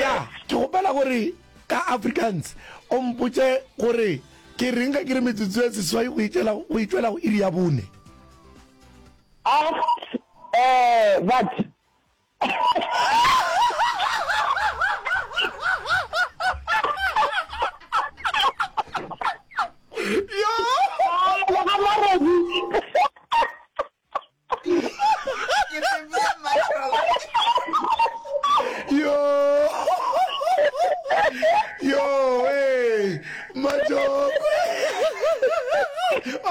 ya ke gopela gore ka africans o mpotse gore ke reng ga ke re metsotso ya seswai go itšwela go iri ya bone eh, but yo yo yo eh majokwe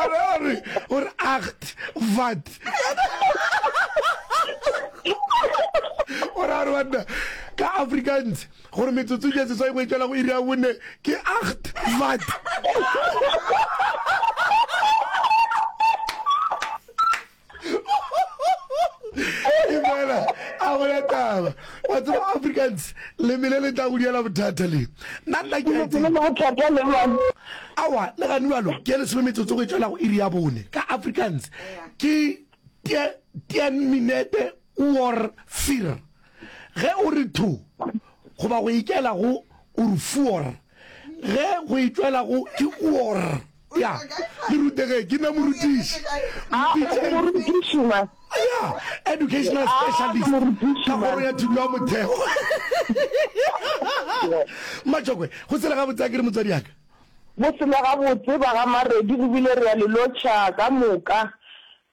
ore ore ore acht vat ore ore banna ka afrikaans gore metsotso ya seswai go etšwela go iri ya bone ke acht vat fela a go ya taba wa tseba africans le mele le tla go diela bothata le nna nna ke awa le gane balo ke lesome metsotso go etšwela go iri ya bone ka africans ke ten minute or fir Ge o re thu, goba go ikela go o re fuor, ge go itšwela go ke uor. Ya, le rutege, ke nna morutiši. A o morutiši, ma? Ya, educational specialist, ka kgoro ya thuto ya motheo. Matšokwe, go sele gabotse akere, motswadiaka? Go sele gabotse, ba ga Maredi, re bile re ya le lotšha ka moka.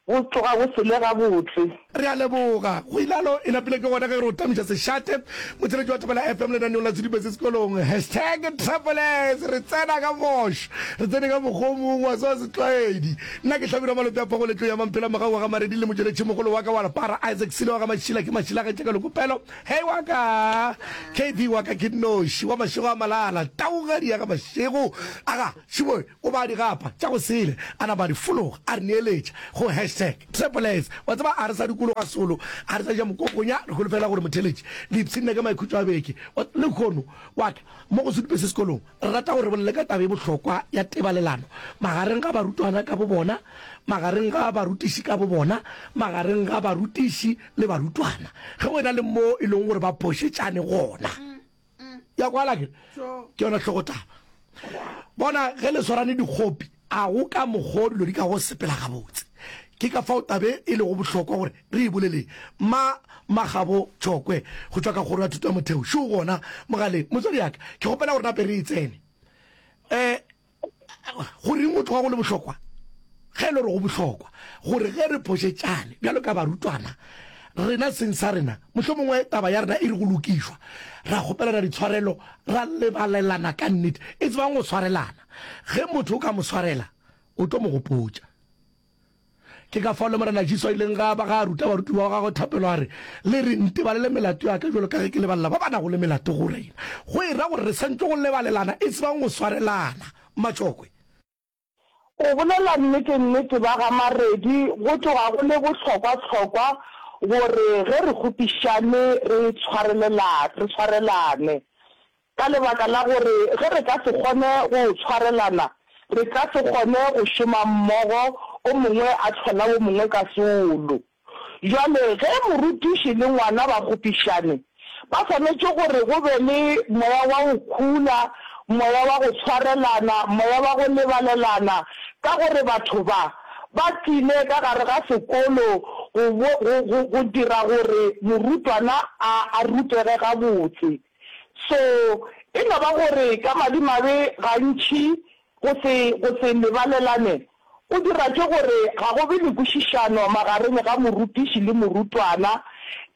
Go tloga go sele gabotse. Re a leboga. Go ile a no e napile ke gona ge re otamisa sešate. Motšheletši wa Thobela FM lenaneong la Sedume se Sekolong. Hashtag Travelers re tsena ka moš, re tsene ka mokgwa o mongwe wa se wa setlwaedi. Nna ke Hlabirwa Malope a Phogo Letlou ya Mampela Mogau wa ga Maredi le motšweletšimogolo wa ka wa Lepara Isaac Sile wa ga Mašila ke Mašila ga Tšeka Lokopelo Hey wa ka KB wa ka ke nnoši wa mašego a malala taugadi ya ga mašego a ga Tšhiboi o baa digapa tša go sele, a napa a di fologa, a re neeletša go hashtag Travelers. Wa tseba, a re sa dikologa solo, a re sa ja mokokonya, re holofela gore motheeletši Lipsina ka maikhutšo a beke wa lehono wa ka mo go sedupe se sekolong. Re rata gore re bolele ka taba e bohlokwa ya tebalelano magareng ga barutwana ka bobona, magareng ga barutiši ka bobona, magareng ga barutiši le barutwana ge go e na le moo e lego gore ba phošetšane gona. ya kwala ke ke yona tlhogo taba bona ge le swarane dikgopi a go ka mokgwa dilo di ka go sepela gabotse ke ka fao tabe e lego bohlokwa gore re e boleleng ma magabo tšokwe go tšwa ka kgoro ya thuto ya motheo šo gona mogaleng motswadi yaka ke kgopela gore nape re e tsene um go reng go tloga go le bohlokwa ge e le gore go bohlokwa gore ge re phošetšane bjalo ka barutwana rena seng sa rena mohlho mongwe taba ya rena e re go lokišwa ra kgopelana ditshwarelo ra lebalelana ka nnete e tsebang go tshwarelana ge motho o ka mo tshwarela o tlo mo gopotša Ke ka fao le Morena Jesu a ileng ga ba ga a ruta barutiwa ba gagwe thapelo a re, Le re ntebalele melato ya ka bjalo ka ge ke lebalela ba ba nago le melato go rena. Go e ra gore re swanetše go lebalelana e se bang go swarelana matšokwe. Go bolela nnete, nnete ba ga Maredi go tloga go le bohlokwa-hlokwa gore ge re kgopišane re tshwarelelane, re tshwarelane. Ka lebaka la gore ge re ka se kgone go tshwarelana, re ka se kgone go šoma mmogo, o mongwe a hlola o mongwe ka seolo. Bjale ge morutiši le ngwana ba kgopišane, ba swanetše gore go be le moya wa go khula, moya wa go tshwarelana, moya wa go lebalelana, ka gore batho ba, ba tlile ka gare ga sekolo go, go, go, go dira gore morutwana a, a rutege gabotse. So, e no ba gore ka madimabe gantši go se, go se lebalelane go dira ke gore ga go be le kwešišano magareng ga morutiši le morutwana.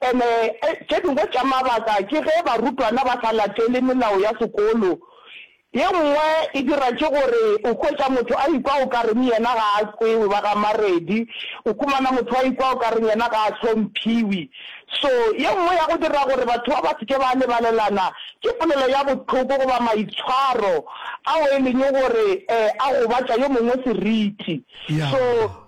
And-e tše dingwe tša mabaka ke ge barutwana ba sa latele melao ya sekolo Ye nngwe e dira ke gore o hwetša motho a ikwa o ka reng yena ga a kwewe, ba ga Maredi. O humana motho a ikwa o ka reng yena ga a hlomphiwi. So, ye nngwe ya go dira gore batho ba ba se ke ba lebalelana ke polelo ya bohloko goba maitshwaro ao e leng gore a gobatša yo mongwe seriti. So,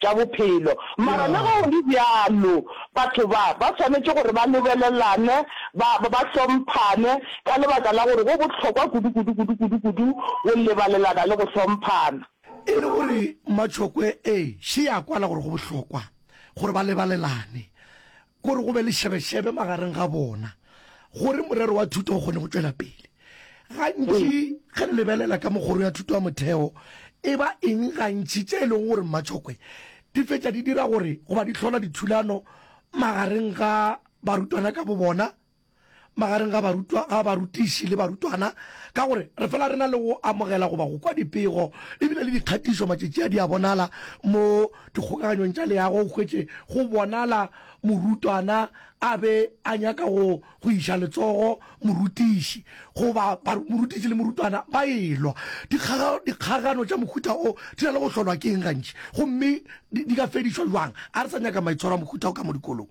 tša bophelo. Mara le ge go le bjalo, batho ba, ba swanetše gore ba lebelelane, ba, ba, ba hlomphane, ka lebaka la gore go bohlokwa kudu, kudu, kudu, kudu, kudu go lebalelana le go hlomphana. E le gore matšhokwe, ee, še ya kwala gore go bohlokwa gore ba lebalelane. gore go be le šebešebe magareng ga bona gore morero wa thuto o kgone go tšwela pele. Gantši ge re lebelela ka mo kgoro ya thuto ya motheo e ba eng, gantši tše e lego gore mmatšhokwe di fetša di dira gore goba di hlola dithulano magareng ga barutwana ka bobona, magareng ga barutwa, ga barutiši le barutwana ka gore re fela re na le go amogela goba go kwa dipego e bile le dikgatišo matšatši a di a bonala mo dikgokaganyong tša leago o hwetše go bonala morutwana a be a nyaka go go iša letsogo morutiši goba morutiši le morutwana ba elwa dikgagano tša mohuta o di na le go hlolwa ke eng gantši gomme di ka fedišwa jwang a re sa nyaka maitshwaro a mohuta o ka mo dikolong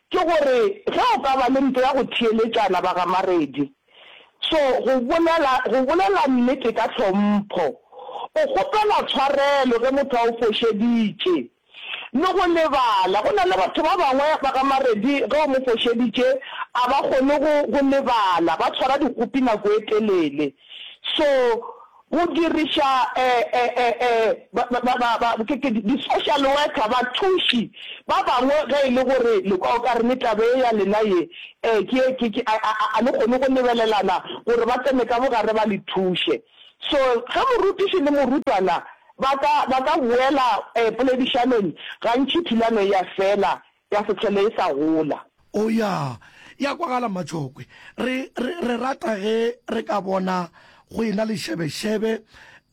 Ke gore ge o ka ba le mpe ya go theeletšana ba gamaredi. So, go bolela, go bolela nnete ka tlhompho. O kgopela tshwarelo ge motho a go fošeditše. Le go lebala. Go na le batho ba bangwe ba gamaredi ge o mo fošeditše a ba kgone go, go lebala, ba tshwara dikgopi nako e telele. So, Go diriša di-social worker, bathuši, ba bangwe ge e le gore le kwa o ka reng taba ye ya lena ye a le kgone go lebelelana gore ba tsene ka bogare ba le thuše. So ge morutiši le morutwana ba ka boela poledišanong gantši thulano e a fela Ya se hlole e sa gola. Oh ya, ya kwagala mmatšhokwe. Re, re, re rata ge re ka bona go ena le šebešebe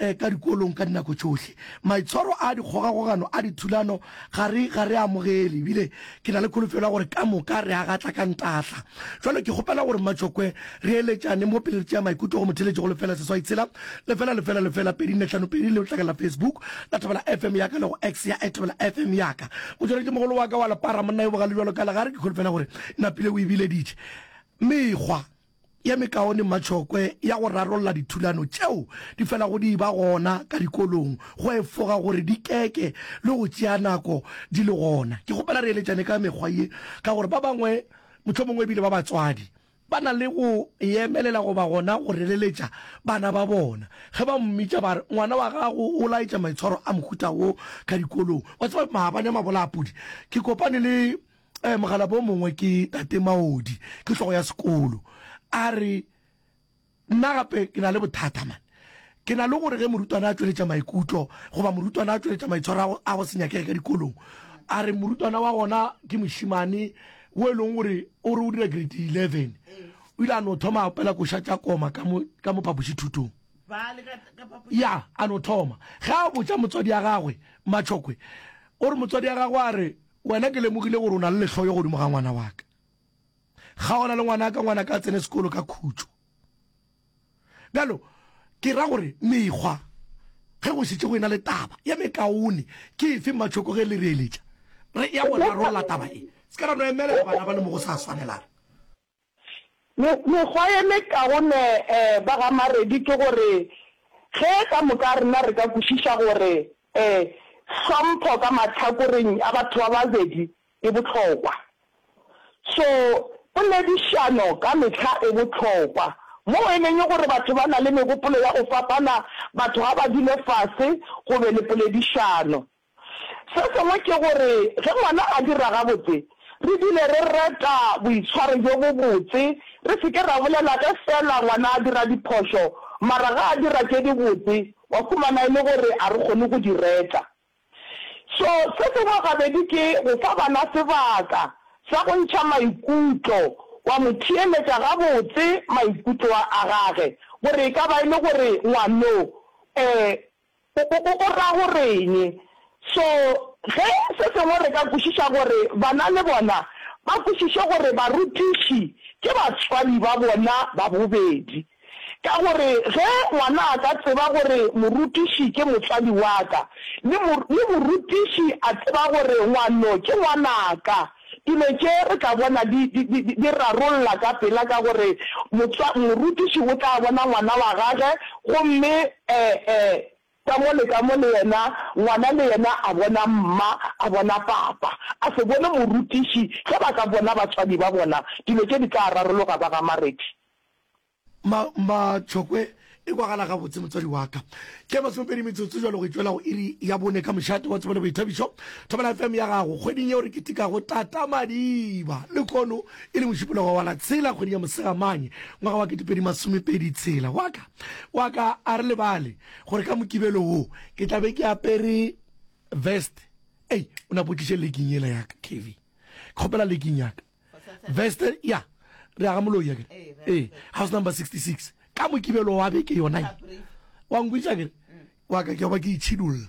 eh, ka dikolong ka dinako tšohle. Maitshwaro a dikgogakgogano a dithulano ga re, ga re a amogele, ebile ke na le kholofelo ya gore ka moka re a gatla ka ntahla. Jwale ke kgopela gore mmatšhokwe Re eletšane mo pele re tšea maikutlo go motheletši go lefela seswai tshela lefela lefela lefela pedi nne hlano pedi le letlakala la Facebook la Thobela FM ya ka le go X ya @thobela FM ya ka. Motšweletšimogolo wa ka wa lepara monna yo bogale bjalo ka legare ke kholofela gore napile o e bileditše mekgwa ye mekaone mmatšhokwe ya go rarolla dithulano tšeo di felago di ba gona ka dikolong go efoga gore di keke le go tšea nako di le gona. Ke kgopela re eletšane ka mekgwa ye ka gore ba bangwe mohlomongwe ebile ba batswadi Ba na le go e emelela goba gona go releletša bana ba bona. Ge ba mmitša ba re, Ngwana wa gago o laetša maitshwaro a mohuta wo ka dikolong. Wa tseba, maabane a mabolaapudi ke kopane le mogalabomongwe ke Tate Maodi, ke hlogo ya sekolo, a re, Nna gape ke na le bothata, man. Ke na le gore ge morutwana a tšweletša maikutlo, goba morutwana a tšweletša maitshwaro a go se nyakege ka dikolong, a re morutwana wa gona ke mošemane wo e lego gore o re o dira grade 11, o ile a no thoma a opela koša tša koma ka mo, ka mo phapošithutong. Ya, a no thoma. Ge a botša motswadi wa gagwe, Matšhokwe o re motswadi wa gagwe a re, Wena ke lemogile gore o na le lehloyo godimo ga ngwana wa ka. kgaogana le ngwanaka ngwanaka a tsene sekolo ka khutšo bjalo ke ra gore mekgwa ge go šetse go ena le taba ya mekaone ke efe matšhoko ge le reeletša re ya go rarolla taba e se ka ra no emelela bana ba le mo go sa swanelang mekgwa ye mekaone um ba ga maredi ke gore ge ka moka rena re ka kwešiša gore um hlompho ka mahlakoreng a batho ba babedi e bohlokwa. So poledišano ka mehla e bohlokwa. Moo e leng gore batho ba na le megopolo ya go fapana, batho ga ba dule fase go be le poledišano. Se sengwe ke gore ge ngwana a dira gabotse, re dule re reta boitshwaro bjo bobotse, re se ke ra bolela ge feela ngwana a dira diphošo mara ge a dira tše dibotse wa fumana e le gore a re kgone go di reta. So, se sengwe gabedi ke go fa bana sebaka sa go ntšha maikutlo, wa mo theeletša gabotse maikutlo a gage, gore e ka ba e le gore ngwano o, o, o ra go re'ng. So, ge se sengwe re ka kwešiša gore bana le bona ba kwešiše gore barutiši ke batswadi ba bona ba bobedi. Ka gore ge ngwana a ka tseba gore morutiši ke motswadi wa ka, le le morutiši a tseba gore ngwano ke ngwana ka, dilo tše re tla bona di, di, di, di rarolla ka pela ka gore motswa, morutiši o tla bona ngwana wa gage gomme e, e, ka mo le ka mo le yena ngwana le yena a bona mma, a bona papa, a se bone morutiši. Ge ba ka bona batswadi ba bona, dilo tše di tla rarologa, ba ga Marethi. Ma, ma, tšhokwe e kwagala gabotse, motswadi wa ka. Ke ya masomepedi metsotso jalo go itšwela go iri ya bone ka mošate wa tsebo le boithabišo. Thobela FM ya gago, kgweding yeo re ketekago Tata Madiba. Lekono e le mošupologo wa la tshela kgweding ya Mosegamane ngwaga wa ketepedi masomepedi tshela. Wa ka, wa ka a re lebale gore ka Mokibelo wo ke tla be ke apere veste. Ei, o napotliše leking yela ya ka, Kevy. Ke kgopela leking ya ka. veste ya re aga moloi yakere ee house number 66 ka mokibelo wa beke yona wa nkwiša kere wa ka ke ba ke itšhidulla